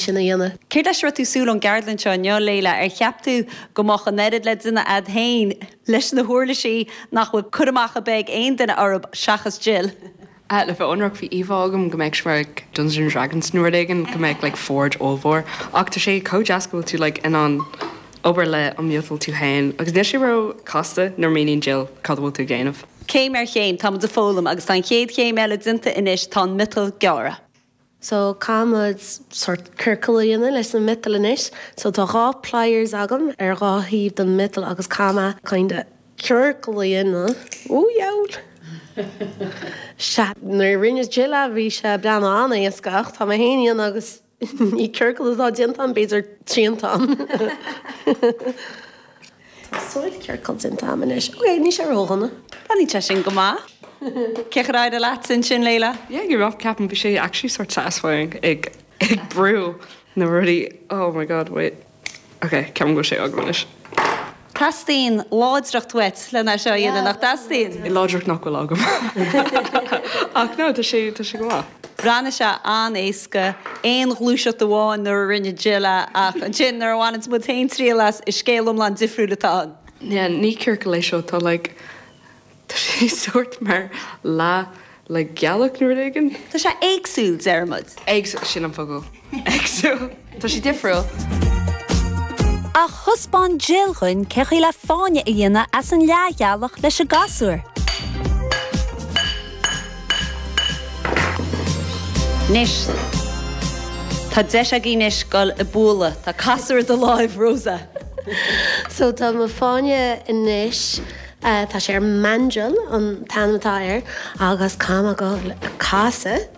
sin a dhéanamh. Céard leis a raibh tú súil ón gceardlann seo inniu, Leila? Ar cheap tú go mbeadh an oiread le déanamh a'd féin leis na huirlisí nach bhfuil cur amach ar bith ag aon duine orthub, seachas Jill? Ah, le bheith ionraic, bhí íomhá agam go mbeadh sé mar Dungeons and Dragons nó rud éigin, go mbeadh like forge ollmhór. Ach tá sé chomh deas go bhfuil tú like in ann obair le an miotal tú féin. Agus níl sé ró chasta nuair a míníonn Jill cad a bhfuil tú ag déanamh. Céim ar chéim, táimid a foghlaim agus tá an chéad chéim eile déanta anois, tá an miotal gearrtha. So, caithfimid sórt ciorcal a dhéanamh leis an miotal anois. So, tá dhá pliers agam ar dhá thaobh den mhiotal agus caithfidh mé kinda ciorcal a dhéanamh. Ó, dheabhail! Sea, nuair a rinne Jill é bhí sé ag breathnú an-éasca ach tá mé féin á dhéanamh agus ní ciorcal atá déanta ann, b'fhéidir triantán. Sórt ciorcal déanta agam anois. Ok, níl sé ródhona. Tá sé sin go maith. Cé chomh deacair a bhí sé sin, Leila? Yeah, you're right, ceapaim bhí sé actually sort satisfying ag ag brú na rudaí oh my god wait ok ceapaim go bhfuil sé agam anois. Teastaíonn láidreacht uait le n-a seo a dhéanamh, nach dteastaíonn? Láidreacht nach bhfuil agam. Ach no, tá sé, tá sé go maith. Bhreathnaigh sé an-éasca, aon ghluaiseacht amháin nuair a rinne Jill é, ach ansin, nuair a bhaineanns muid féin triail as, is scéal iomlán difriúil atá ann. Yeah, ní ciorcal é seo, tá like, tá sé sórt mar leathghealach nó rud éigin. Tá sé éagsúil, deirimid. Éagsúil, sin an focal. Exactly. Tá sé difriúil. Ach thaispeáin Jill dhúinn cé chaoi le fáinne a dhéanamh as an leathghealach leis an gcasúr. Anois, tá deis againn anois dul ag bualadh. Tá casúr i do láimh, Rosa. So tá mo fáinne anois, tá sé ar mandrel an t-ainm atá air, agus tá agam casúr.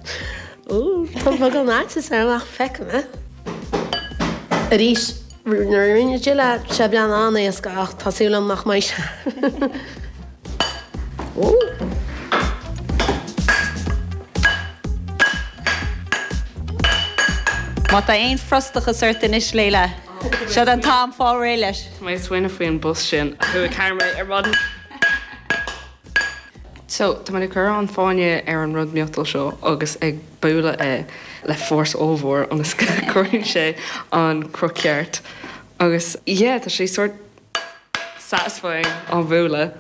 Úúú, tá beagán faitís orm ach feicim é. Arís, nuair a rinne Jill é, d'fhéach sé an-éasca ach tá súil agam nach mbeidh sé. Úúú. Má tá aon frustachas ort anois, Leila, seo an t-am fáil réidh leis. Tá mé ag smaoineamh faoi an bus sin a chuaigh thar mé ar maidin. So, tá mé ag cur an fáinne ar an rud miotal seo agus ag bualadh é le fórsa ollmhór ionas go gcuireann sé an cruth ceart agus yeah, tá sé sort satisfying á bhualadh.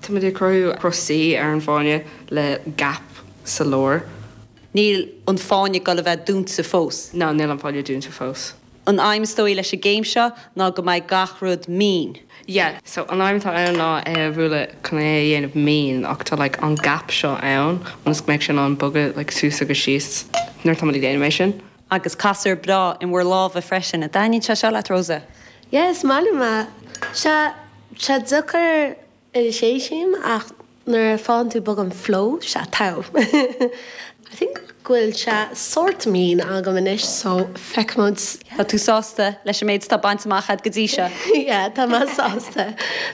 Táimid ag cruthú cruth C ar an fáinne le gap sa lár. Níl an fáinne ag dul a bheith dúnta fós. No, níl an fáinne dúnta fós. An aidhm is dóigh leis an gcéim seo ná go mbeidh gach rud mín. Yeah, so an aidhm atá ann ná é a bhualadh chun é a dhéanamh mín ach tá like an gap seo ann ionas go mbeidh sé in ann bogadh like suas agus síos nuair atá muid ag déanamh é sin. Agus casúr breá in bhur lámha freisin. An dtaitníonn sé seo leat, Rosa? Yeah, is maith liom é. Sea, sea, deacair Anois is arís ach nuair a fhaigheann tú beagán flow sea tá I think go bhfuil sé sórt mín agam anois so feicfimid. Tá tú sásta leis an méid atá bainte amach agat go dtí seo? Yeah tá mé sásta.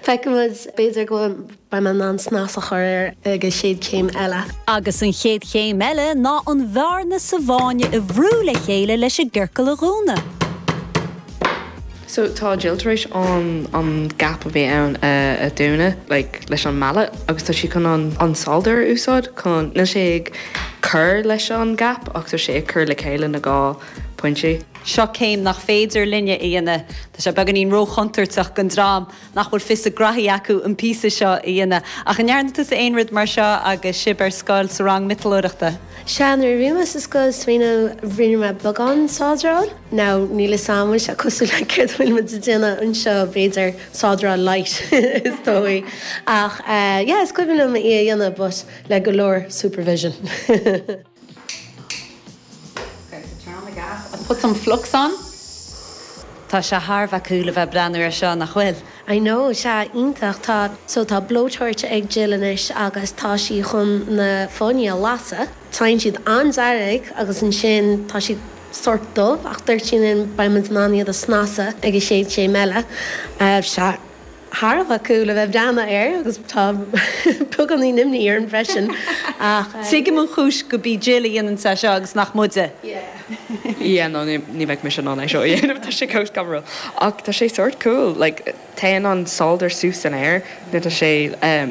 Feicfimid b'fhéidir go bhfuil beidh mé in ann snas a chur air ag an chéad chéim eile. Agus an chéad chéim eile ná an bhearna sa bhfáinne a bhrú le chéile leis an gciorcal a dhúnadh. So tá Jill tar éis an an gap a bhí ann a a dhúnadh like leis an mallet agus tá sí chun an an solder a úsáid chun, níl sé ag cur leis an gap ach tá sé ag cur le chéile an dá phointe. Seo céim nach féidir linne a dhéanamh. Tá sé beagáinín ró-chontúirteach don dream. nach bhfuil fios a ngraithe acu an píosa seo a dhéanamh. Ach an ndearna tusa aon rud mar seo agus sibh ar scoil, sa rang miotalóireachta? Sea, nuair a bhí mé sa scoil is cuimhin, rinne mé beagán sádráil. Now, níl fhios a'm, bhfuil sé cosúil le céard atá muid a' déanamh anseo, b'fhéidir sádráil light is dóigh. Ach eh, yeah, is cuimhin liom í a dhéanamh but le go leor supervision. Okay, so turn on the gas and put some flux on. Tá sé thar bheith cool a bheith ag breathnú ar seo, nach bhfuil? I know, sea, iontach, tá. So tá blowtorch ag Jill anois agus tá sí chun na fáinní a lasadh. Téann siad an-dearg agus ansin tá siad sórt dubh ach dúirt sí linn, beidh muid in ann iad a snasadh ag an gcéad chéim eile, sea. thar a bheith cool a bheith ag breathnú air agus tá beagáinín imní orm freisin ach. Tuigim an chúis gurb í Jill a dhéanann sé seo agus nach muide. Yeah no ní bheinn mise in ann é seo a dhéanamh tá sé cineál scanrúil ach tá sé sórt cool like téann an solder suas san aer nuair tá sé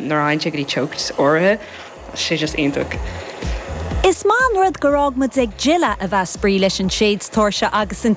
nuair a fhaigheann sé go dtí teocht áirithe tá sé just iontach. Is maith an rud gur fhág muid ag Jill a a bheith spraoi leis an séid-tóirse agus an.